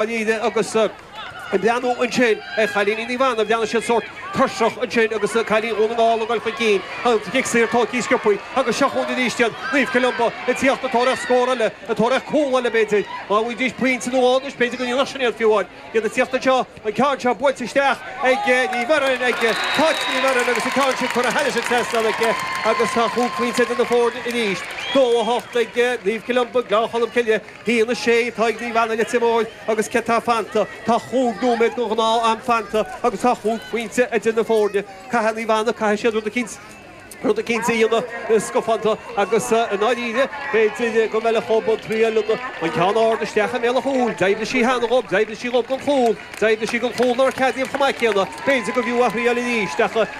Dháiríre agus ag breathnú ansin ar chailíní Naomh Anna, bhreathnaigh siad sórt tuirseach ansin agus cailíní Dhún na nGall ag dul chun cinn, an cic saor tógtha sciobtha agus seo chugainn arís iad, Naomh Columba ag tíocht ag tóraíocht scór eile, ag tóraíocht cúl eile b'fhéidir. Dá bhfaighidís pointe nó dhó anois b'fhéidir go ndéanfadh sin iad fiú amháin. Iad ag tíocht anseo, an ceann seo buailte isteach ag Ní Bheirn, ag Cáit Ní Bheirn agus an ceann sin curtha thar an trasnán aici agus tá chúig phointe idir na foirne arís. Dó a hocht ag Naomh Columba, Gleann Cholm Cille. A haon a sé atá ag Naomh Anna Leitir Móir agus céard atá fanta? Tá chúig nóiméad den ghnáth am fanta agus tá chúig phointe idir na foirne. Caithfidh Naomh Anna, caithfidh siad rud eicínt, rud eicínt a dhéanamh scafánta agus i ndáiríre b'fhéidir go mb'fhiú dhóib a thriáil an ceann ard isteach i mbéal an chúil. D'oibrigh sé cheana dhóib, d'oibrigh sé dhóib don chúl, d'oibrigh sé don chúl nár ceadaíodh chomh maith céanna, b'fhéidir gurbh fhiú a thriáil arís ach.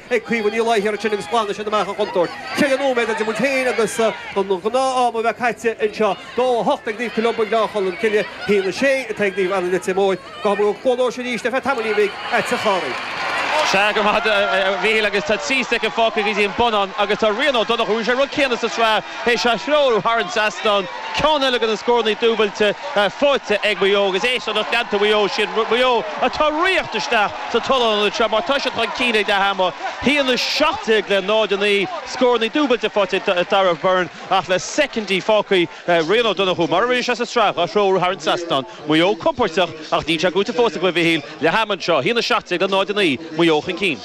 ag cuimhin i láthair ansin agus glanadh sin amach an chontúirt. Sé nóiméad idir muid féin agus an ghnáth-am a bheith caite anseo. Dó a hocht ag Naomh Columba Gleann Cholm Cille, a haon a sé atá ag Naomh Anna Leitir Móir. Gabhfaidh muid go Cluain Eois arís le haghaidh tamaillín beag, agat a Chárthaigh. Sea, go maith duit, a Mhíchíl, agus tá trí shoicind fágtha go dtí an bonnán agus tá Rian Ó Donnchadha, rinne sé an rud céanna sa tsraith, é seo a threorú thar an trasnán, ceann eile de na scóranna dúbailte faighte ag Maigh Eo agus é seo lucht leanta Mhaigh Eo siar, Maigh Eo atá ag tíocht isteach sa tollán an uair seo mar tá siad chun cinn ag leath ama, 1, 17 le 0, 9, scóranna dúbailte faighte ag Darragh Beirne ach le soicindí fágtha. Rian Ó Donnchú, mar a rinne sé sa tsraith, dhá threorú thar an trasnán, Maigh Eo compordach ach níl sé buaite fós acu, a Mhichíl, leath ama anseo, 1, 17 le 0, 9, Maigh Eo chun cinn.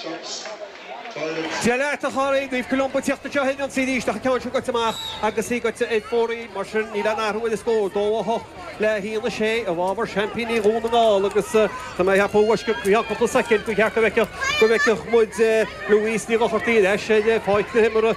Dia leat, a Chárthaigh! Naomh Columba, ag tíocht anseo ag ionsaí arís ach an ceann seo goite amach agus í goite ar fóraoil. Mar sin, níl aon athrú ar an scór, 2, 8 le 1, 6 i bhfábhar seaimpíní Dhún na nGall agus tá mé ag ceapadh go ceann cúpla soicind gur cheart go bhfeicfeadh muid Louise Ní Dhochartaigh ar ais ar pháirc na himeartha.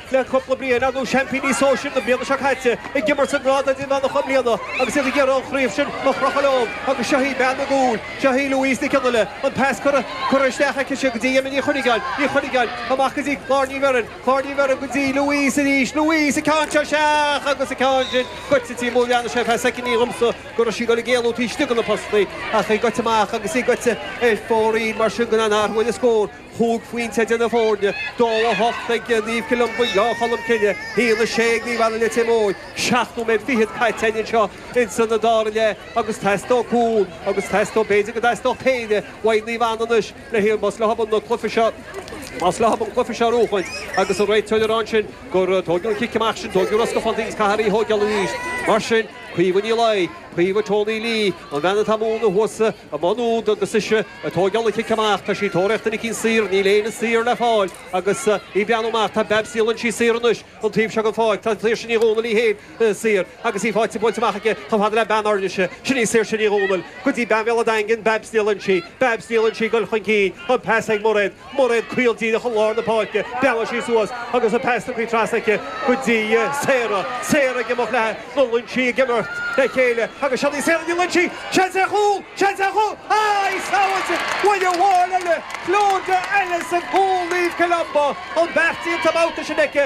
Le cúpla bliain anuas seaimpíní sóisir na bliana seo caite ag imirt sa ngrád idirmheánach i mbliana agus iad ag iarraidh an chraobh sin a chrochadh leo agus seo í bean na gcúl, seo í Louise Nic Fhionnaile, an pas curtha isteach aici sin go dtí Emma Ní Chuinneagáin, Ní Chuinneagáin, amach go dtí Clár Ní Bheirn, Clár Ní Bheirn go dtí Louise arís, Louise, an ceann seo isteach agus an ceann sin goite amú, bhreathnaigh sé ar feadh soicindí dhomsa go raibh sí ag dul ag éalú taobh istigh de na postaí ach í goite amach agus í goite ar fóraoil mar sin gan aon athrú ar an scór. 5 phointe idir na foirne, 2-8 ag Naomh Columba, Gleann Cholm Cille, 1-6 ag Naomh Anna Leitir Móir, 7 nóiméad fichead caite againn anseo ins an dara leath agus teastóidh cúl agus teastóidh b'fhéidir go dteastódh péire uaidh Naomh Anna anois le hiarraidh más leo an cluiche seo más leo an cluiche seo a bhuachaint agus an réiteoir ag rá ansin gur tóigeadh an cic amach sin tóigeadh róscafánta é agus caithfear í a thóigeáil arís mar sin Caoimhe Ní Laoi, Caoimhe Tony Lee, an bhean atá muna thuas sa. Maigh Nuad agus ise ag tógáil an chic amach, tá sí ag tóraíocht duine éicint saor, níl éinne saor le fáil agus í ag breathnú amach, tá Babs Ní Loingsigh saor anois an taobh seo den pháirc, tá Saoirse Ní Dhomhnaill í féin saor agus í faighte buailte amach aici chomh fada le bean Ráth Chairn, sin í Saoirse Ní Dhomhnaill go dtí bean Bhéal a' Daingin, Babs Ní Loingsigh, Babs Ní Loingsigh ag dul chun cinn, an pas ag Muiréad. Muiréad caol díreach i lár na páirce, bhreathnaigh sí suas agus an pas tugtha trasna aici go dtí Sarah. Sarah ag imeacht léi, Ní Loingsigh ag imirt le chéile agus seo í Sarah Ní Loingsigh! Seans ar chúl! Seans ar chúl! Aye! Sábháilte! Ná ina ball eile, Clodagh Ellis, sa gcúl, Naomh Columba, an beart déanta an babhta sin aici.